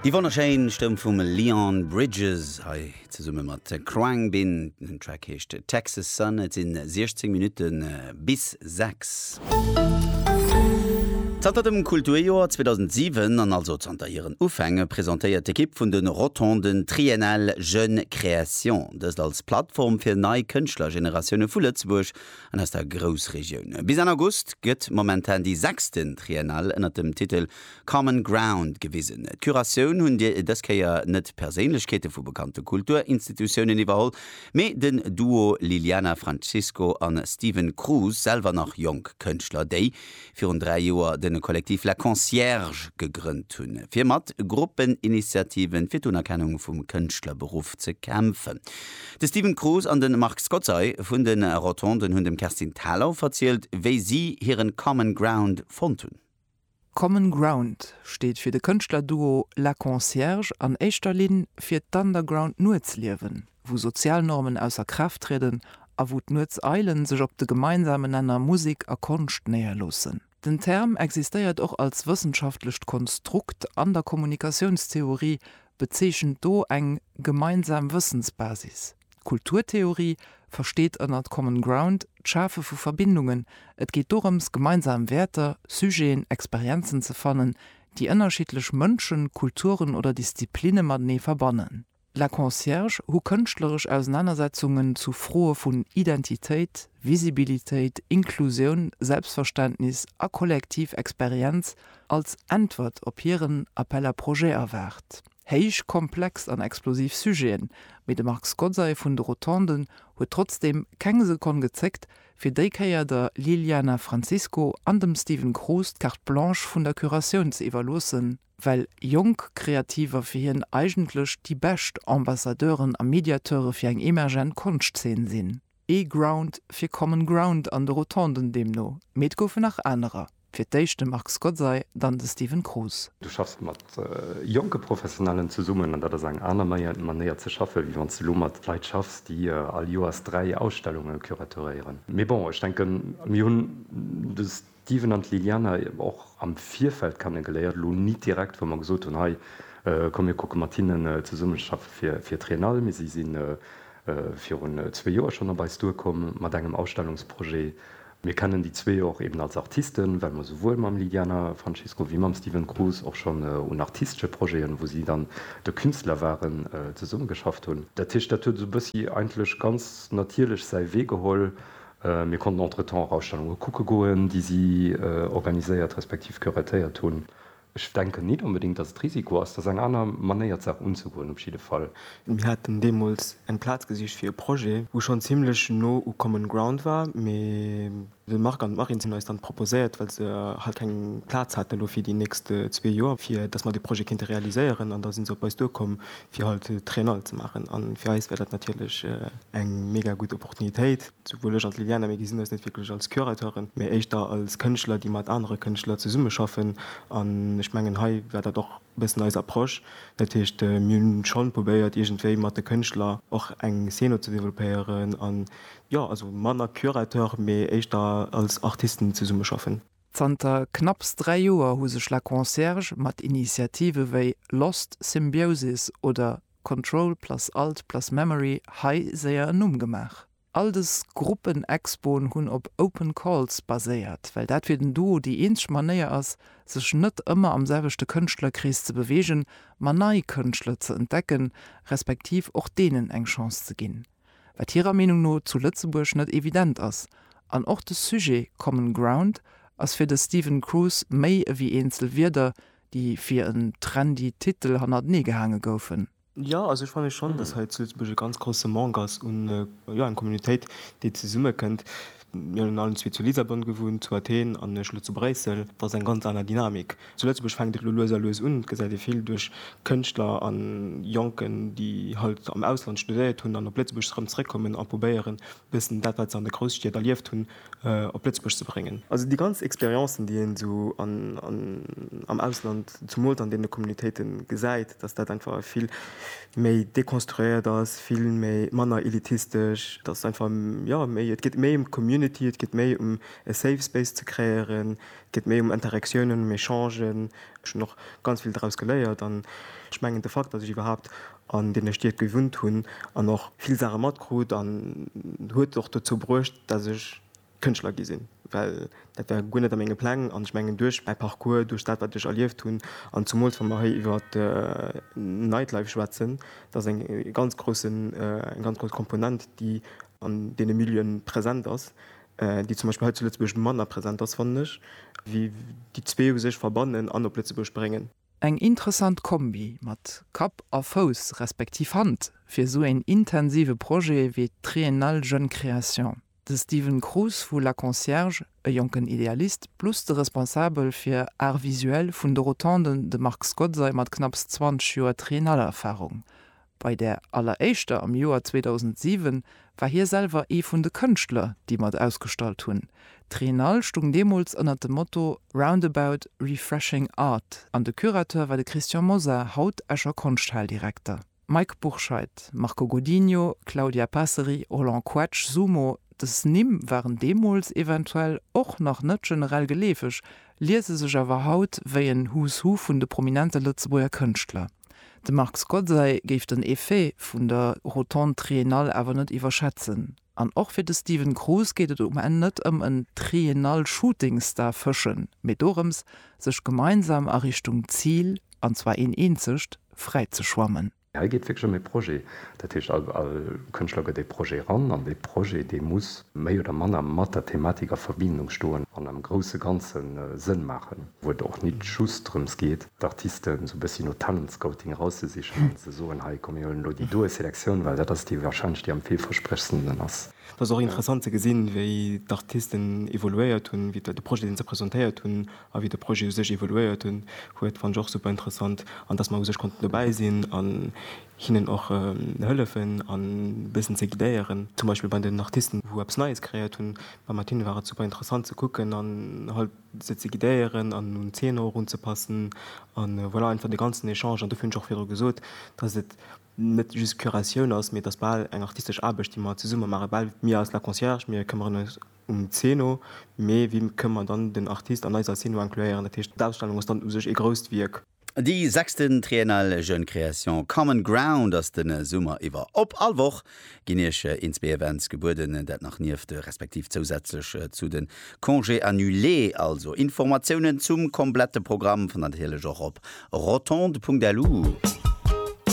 Déi wonnerschéin Stëmm vum Leon Bridges hei zesumme mat Khruangbin. Den Track heescht Texas Sun. Et sinn 16 Minutten bis 6. Zanter dem Kulturjoer 2007 an also zanter hiren Ufänge presentéiert d'Ekipp vun de Rotonden Triennale Jeunes Créations, dëst als Plattform fir nei Kënschtlergeneratioune vu Lëtzebuerg an aus der Groussregioun. Bis Enn August gëtt momentan déi sechsten Triennale ënnert dem Titel Common Ground gewisen. D'Curatioun hunn dës Kéier net Perséinlechkeete vu bekannte Kulturinstitutiounen iwwerholl, mee den Duo Liliana Francisco a Steven Cruz, selwer nach jonk Kënschtler, déi virun dräi Joer den Collectif La Concierge gegrënnt hunn, fir mat Gruppeninitiativen fir d'Unerkennung vum Kënschtlerberuff ze kämpfen. De Steven Cruz an de Marc Scozzai vun de Rotonden hunn dem Kerstin Thalau verzielt, wéi si hiren Common Ground fonnt hunn. Common Ground steet fir de Kënschtlerduo La Concierge an éischter Linn fir d'Underground-Nuetsliewen. wou sozial Normen ausser Kraaft trieden a wou d'Nuets Eilen sech op de gemeinsamen Nenner Musik a Konscht néierloossen. Den Term existéiert och als wëssenschaftlecht Konstrukt an der Kommunikatiounstheorie, bezeechent do eng gemeinsam Wëssensbasis. D'Kulturtheorie versteet ënnert Common Ground d'Schafe vu Verbindungen, et geet dorëms gemeinsam Wäerter, Sujeten, Experienzen ze fannen, déi ënnerschiddlech Mënschen, Kulturen oder Disziplinne matenee verbannen. La Concierge hu kënschtleresch Ausenanersetzungen zu Froe vun Identitéit, Visibilitéit, Inklusioun, Selbstverständnis a kollektiv Experienz als Äntwert op hiren Appel à projets erwaart. Héich komplex an explosiv Sujeten, mee de Marc Scozzai vun de Rotonden huet trotzdeem keng Sekonn gezéckt, fir déi Kéier der Liliana Francisco an dem Steven Kroos d'Carte Blanche vun der Curatioun ze iwwerloossen, well jonk Kreativer fir hien eigentlech déi bescht Ambassadeuren a Mediateure fir eng emergent Konschtzeen sinn. Ee Ground fir Common Ground an de Rotonden deemno, mee et goufen nach anerer, fir d'éischt de Marc Scozzay, dann de Steven Kroos. Du schaffs mat jonke Professionellen zesummen an dat ass eng aner Manéier ze schaffen, wéi wann s de elo mat Leit schaffs, déi all Joers dräi Ausstellunge curatoréieren. Mee bon, ech denken, mir hunn de. D'Steven an d'Liliane hu mer och am Virfeld kennegeléiert, elo nit direkt, wou mer gesot hunn, hei komm mir kucke mat hinnen zesummeschaffe fir d'Triennale, mee si si virun zwee Joer schonn op eis duerkomm mat engem Ausstellungsprojet. Mir kennen déi zwee och eben als Artisten, well mer souwuel mam Liliana Francisco wéi mam Steven Cruz och schonn un artistesche Projeten, wou si dann de Künstler waren, zesummegeschafft hunn. Dat heescht, dat huet esou bëssi eigentlech ganz natierlech säi Wee geholl, Mir konnten entretemps och Ausstellunge kucke goen, déi si organiséiert respektiv curatéiert hunn. Ech denken nit onbedéngt, datt et Risiko ass. Dat ass eng aner Manéier, d'Saach unzegoen op jidde Fall. Mir haten deemools eng Plaz gesicht fir e Projet, wou schonn zimmlech no u Common Ground war, mee de Marc an d'Marine hunn eis dann proposéiert, well se halt keng Plaz haten elo fir déi nächst zwee Joer, fir datt mer dee Projet kéinte realiséieren. An da si se op eis duerkomm, fir halt Triennale ze maachen an fir eis wär dat natierlech eng mega gutt Opportunitéit, souwuel ech an d'Liliana, mir gesinn eis net wierklech als Curateuren, mee éischter als Kënschtler, déi mat anere Kënschtler zesummeschaffen an ech mengen hei war dat och e bëssen eis Approche. Dat heescht, mir hunn schonn probéiert iergendwéi mat de Kënschtler och eng Szeno ze développéieren an jo, also manner Curateur, mee éischter als Artisten zesummeschaffen. Zanter knapps dräi Joer hu sech La Concierge mat Initiative wéi Lost Symbiosis oder Control plus Alt plus Memory hei séier en Numm gemaach. All dës Gruppenexpoen hunn op Open Calls baséiert, well dat fir den Duo déi eenzeg Manéier ass, sech net ëmmer am selwechte Kënschtlerkrees ze beweegen, ma nei Kënschtler ze entdecken, respektiv och deenen eng Chance ze ginn. wat hirer Meenung no zu Lëtzebuerg net evident ass, an och de Sujet Common Ground ass fir de Stephen Cruz méi ewéi eenzel Wierder, déi fir en trendy Titel hannertenee gehaange goufen. Jo, also ech fanne schonn, datt hei zu Lëtzebuerg e ganz grousse Manque ass un, jo, eng Communautéit, déi zesummekënnt. Mir hunn allen zwee zu Lissabon gewunnt, zu Athen an ech elo zu Bréissel. Dat ass eng ganz aner Dynamik. Zu Lëtzebuerg fänkt et elo lues a lues un, et gesäit ee vill duerch Kënschtler a Jonken, déi halt am Ausland studéiert hunn an op Lëtzebuerg erëm zeréckkommen a probéieren, e bëssen dat, wat se an de Grousstied erlieft hunn, op Lëtzebuerg ze bréngen. Also déi ganz Experiencen, déi een esou am Ausland, zumools an deene Communautéite gesäit, datt dat einfach e vill méi dekonstruéiert ass, vill méi, manner elitistesch, et ass einfach, jo, méi, et geet méi ëm d'Community, et geet méi ëm e Safe Space ze kreéieren, et geet méi ëm Interaktiounen, ëm Echangen. Ech hunn och ganz vill draus geléiert an ech mengen, de Fakt, datt ech iwwerhaapt an deene Stied gewunnt hunn an och vill Saache matkrut, huet och dozou bruecht, datt ech Kënschtler gi sinn, well dat war guer net a menge Pläng. An ech mengen, duerch mäi Parcours, duerch dat, wat ech erlieft hunn, an zumools wa mer hei iwwer Nightlife schwätzen, dat ass eng ganz groussen, eng ganz grouss Komponent, déi an deene Milieuen present ass, déi zum Beispill hei zu Lëtzebuerg manner present ass, fannen ech, wéi déi zwee u sech verbannen an op Lëtzebuerg bréngen. Eng interessant Kombi mat Kapp a Fouss, respektiv Hand, fir esou een intensive Projet wéi d'Triennale Jeunes Créations. De Steven Cruz vu La Concierge, e jonken Idealist plus de Responsabel fir Art Visuel vun de Rotonden, de Marc Scozzay mat knapps 20 Joer Triennale-Erfarung. Bei där alleréischter am Joer 2007 war hie selwer ee vun de Kënschtler, déi mat ausgestallt hunn. D'Triennale stung deemools ënnert dem Motto Roundabout, refreshing art an de Curateur war de Christian Mosar, haut Escher Konschthal-Direkter. Mike Bourscheid, Marco Godinho, Claudia Passeri, Roland Koetsch, Sumo, Dës Nimm waren deemools eventuell och nach net generell geleefeg, liese sech awer haut wéi en Who's Who vun de prominente Lëtzebuerger Kënschtler. De Marc Scozzay géif den Effet vun der Rotonde Triennale awer net iwwerschätzen. An och fir de Steven Cruz geet et um Enn net ëm en Triennal Shooting Star fëschen, mee dorëms, sech gemeinsam a Richtung Zil, an zwar een eenzegt, fräi ze schwammen. Hei geet et wierklech ëm ee Projet. Dat heescht, all Kënschtler gëtt ee Projet eran, an dee Projet, dee muss méi oder manner mat der Thematik a Verbindung stoen an am grousse Ganze Sënn maachen, wou et och nit just drëms geet, d'Artisten sou bëssi no Talentscouting erauszesichen an ze soen, hei komm mir huelen elo déi doe Selektioun, well dat ass déi wahrscheinlech déi am villversprechendsten ass. Et ass och interessant ze gesinn, wéi d'Artisten evoluéiert hunn, wéi de Projet deen se presentéiert hunn a wéi de Projet u sech evoluéiert hunn huet, fannen ech och super interessant an datt mer u sech konnten dobäi sinn an hinnen och hëllefen an e bëssen ze guidéieren, zum Beispill bei den Artisten wou eppes Neies kreéiert hunn, mat hinne war et super interessant ze kucken an halt. se ze guidéieren an un d'Zeener och unzepassen a voilà, einfach de ganzen Echange. An dofir hunn ech och virdru gesot, dass et net just d'Curatioun ass, mee et ass bal eng artistesch Aarbecht, déi mer zesumme maachen. Bal mir als La Concierge, mir këmmeren eis um d'Zeno, mee wie kënn mer dann den Artist an eiser Zeno incluéieren? Dat heescht, d'Ausstellung ass dann u sech ee grousst Wierk. Déi sechsten Triennale Jeunes Créations Common Ground ass den Summer iwwer op. All Woch ginn iech een, zwee Events gebueden, dat nach nieft, respektiv zousätzlech zu den Congés annulés. Also Informatiounen zum komplette Programm fannt der natierlech och op rotonde.lu.